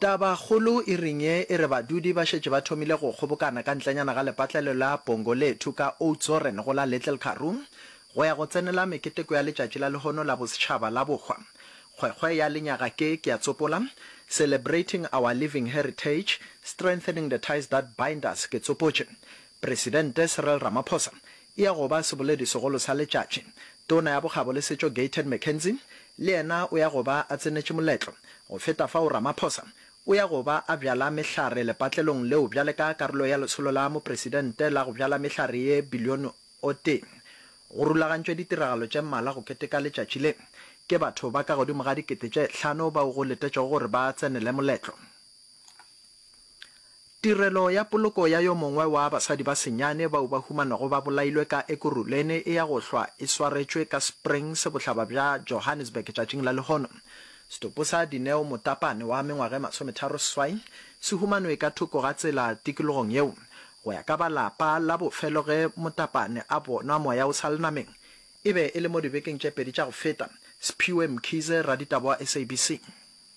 Tabakgolo e reng ye e re badudi ba šetše ba thomile go kgobokana ka ntlenyana ga lepatlelo la Pongolethu ka Oudtshoorn go la Little Karoo go ya go tsenela meketeko ya letšatši la lehono la bosetšhaba la bohwa kgwekgwe ya lenyaga ke, ke a tsopola, Celebrating Our Living Heritage, Strengthening the Ties That Bind Us ke tsopotše, Presidente Cyril Ramaphosa E ya go ba seboledi segolo sa letšatši. Tona ya Bokgabo le Setšo Gayton McKenzie le yena o ya go ba a tsenetše moletlo. Go feta fao Ramaphosa o ya go ba a bjala mehlare lepatlelong leo bjale ka karolo ya Lesolo la Mopresidente la go bjala mehlare ye bilione o tee. Go rulagantšwe ditiragalo tše mmalwa go keteka letšatši le ke batho ba ka godimo ga dikete tše hlano bao go letetšwego gore ba tsenele moletlo. Tirelo ya poloko ya yo mongwe wa basadi ba senyane bao ba humanago ba bolailwe ka Ekurhuleni e ya go hlwa e swaretšwe ka Springs, bohlaba bja Johannesburg tšatšing la lehono. Setopo sa Dineo Motapane wa mengwaga e masometharo seswai se humanwe ka thoko ga tsela tikologong yeo. Go ya ka ba lapa la bofelo ge Motapane a bonwa moya o sa le nameng e be e le mo dibekeng tše pedi tša go feta. Sphiwe Mkhize, raditaba wa SABC.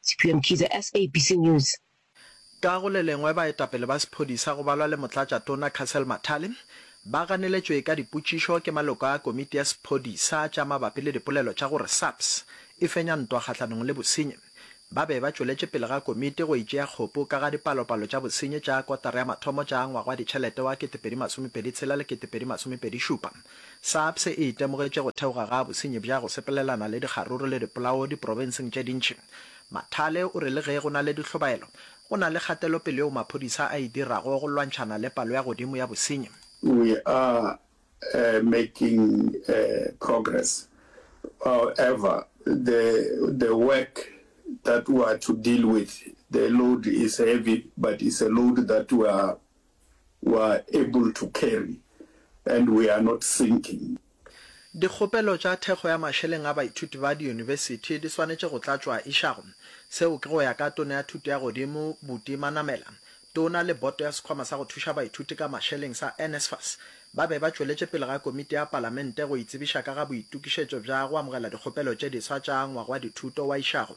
Sephiwe Mkhize, SABC News. Ka go le lengwe baetapele ba sephodisa go balwa le motlatšatona Castle Mathale ba ganeletšwe ka dipotšišo ke maloko a komiti ya sephodisa tša mabapi le dipolelo tša gore SAPS e fenya ntwa kgahlanong le bosenyi. Ba be ba tšweletše pele ga komiti go e tšea kgopu ka ga dipalopalo tša bosenyi tša kotara ya mathomo tša ngwagwaditšhelete wa 2026 le 2027. SAPS e itemogetše go theoga ga bosenyi bja go sepelelana le dikgaruru le dipolao diprobenseng tše dintši. Mathale o re le ge go na le dihlobaelo, go na le kgatelopele yeo maphodisa a e dirago go lwantšhana le palo ya godimo ya bosenyi. We are making progress, however, the the work that we are to deal with, the load is heavy but it's a load that we are we are able to carry and we are not sinking. Dikgopelo tša thekgo ya mašeleng a baithuti ba diyunibesithi di swanetše go tlatšwa išago. Seo ke go ya ka Tona ya Thuto ya Godimo Buti Manamela. Tona le boto ya sekhwama sa go thuša baithuti ka mašeleng sa NSFAS ba be ba tšweletše pele ga komiti ya palamente go itsebiša ka ga boitokišetšo bja go amogela dikgopelo tše diswa tša ngwaga wa dithuto wa išago.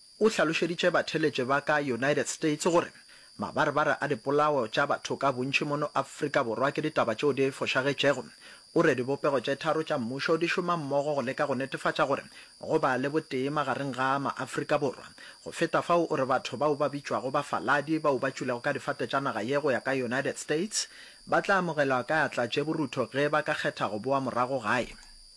O hlalošeditše batheeletše ba ka United States gore mabarebare a dipolao tša batho ka bontši mono Afrika Borwa ke ditaba tšeo di fošagetšego. O re dibopego tše tharo tša mmušo di šoma mmogo go leka go netefatša gore go ba le botee magareng ga maAfrika Borwa. Go feta fao, o re batho bao ba bitšwago bafaladi bao ba tšwilego ka difate tša naga ye go ya ka United States ba tla amogelwa ka atla tše borutho ge ba ka kgetha go boa morago gae.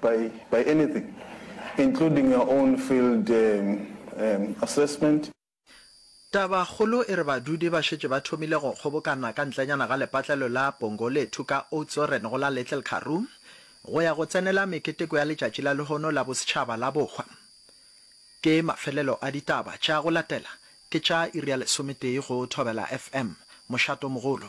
by by anything including your own field assessment. Tabakgolo e re badudi ba šetše ba thomile go kgobokana ka ntlenyana ga lepatlelo la Pongolethu ka Oudtshoorn go la Little Karoo go ya go tsenela meketeko ya letšatši la lehono la bosetšhaba la bohwa. Ke mafelelo a ditaba tša go latela ke tša iri ya lesometee go Thobela FM, Mošatomogolo.